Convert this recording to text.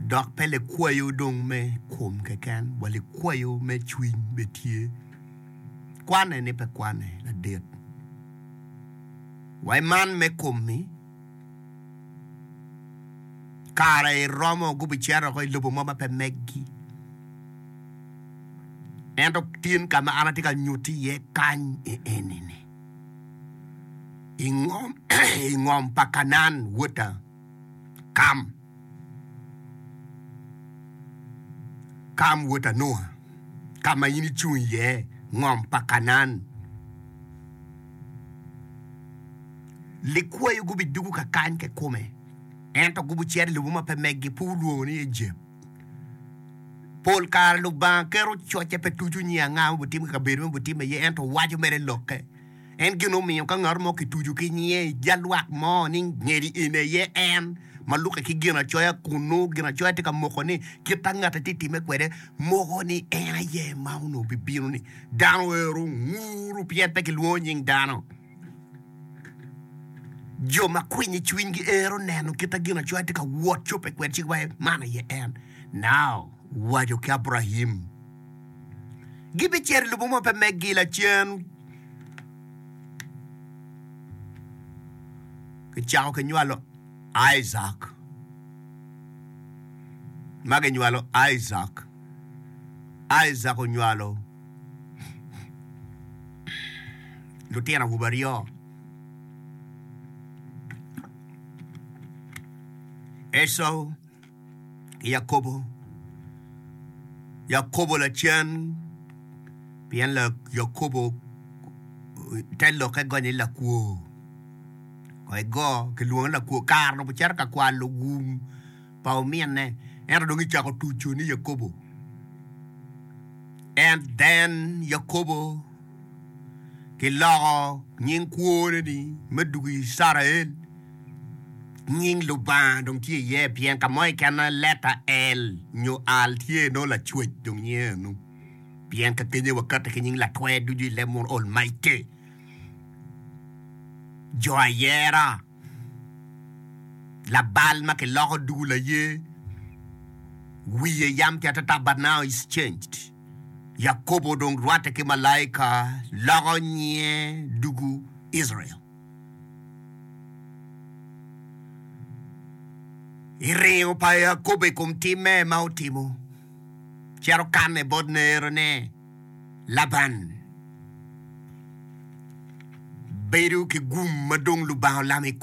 Dok pe likwayo dong me kom keken, wa likwayo me cwiny bene tye. Kwane ni pe kwane ladit. Wa iman me kom-mi, kare romo gubicito oko i lobo mo ma pe meggi. Ento tin ka ma an atye ka nyutti iye kany i eni-ni, i ngom pa Kanaan, wota. Kam, Kam wod Anua, ka ma in icung iye, ngom pa Kanaan. Likwayo gubidwogo ka kany kikome, ento gubicer i lobo ma pe meggi, pud wulwongo ni Ejep. Pol kare Lubanga keto cocce pe tuco nying anga ma obitimo i kabedo ma obitimme iye, ento waco mere i Lokke. En gin omiyo ka ngat mo kitucu ki nyinge i jal lwak mo ni ngeli in aye en, ma lukke ki Ginacoya kun nongo Ginacoya tye ka moko ni kit ma ngatte tye timme kwede moko ni en aye ma onongo bibino-ni, dano ero onguru pien pe kilwongo nying dano. Jo ma kwiny i cwiny giero neno kit ma Ginacoya tye ka wot cobbe kwede cik waci man aye en. Nao owaco ki Abrahim, Gibicito i lobo ma pe meggi lacen. Kicako ki nywalo Aidak. Ma ginywalo Aidak, Aidak onywalo lutino awobe aryo. Ecau. Yakobo, Yakobo lacen, pien Yakobo te lokke gonye ni lakwo. Ko igo kilwongo ni lakwo kare dong ocito ka kwalo wum pa ominne ento dong kicako tuco ni Yakobo. And then Yakobo. Kiloko nying kwone-ni me dwogo Icrael. Nying Lubanga dong tye iye pien ka mo keken letta El nyo Al tye nongo Lacwec dong nyinge eno. Pien kakenya wakati ki nying Latwer ducu i leb mono, Almighty, Jo Ayera, Labal ma kiloko dugo laye, wiye yam ki atata but now is changed. Yakobo dong rwatte ki malaika loko nyinge dugu Icrael. I ringo pa Yakobo i kom timme ma otimo, cito kanne bot nerone Laban, bedo ki gum ma dong Lubanga olamo i kome.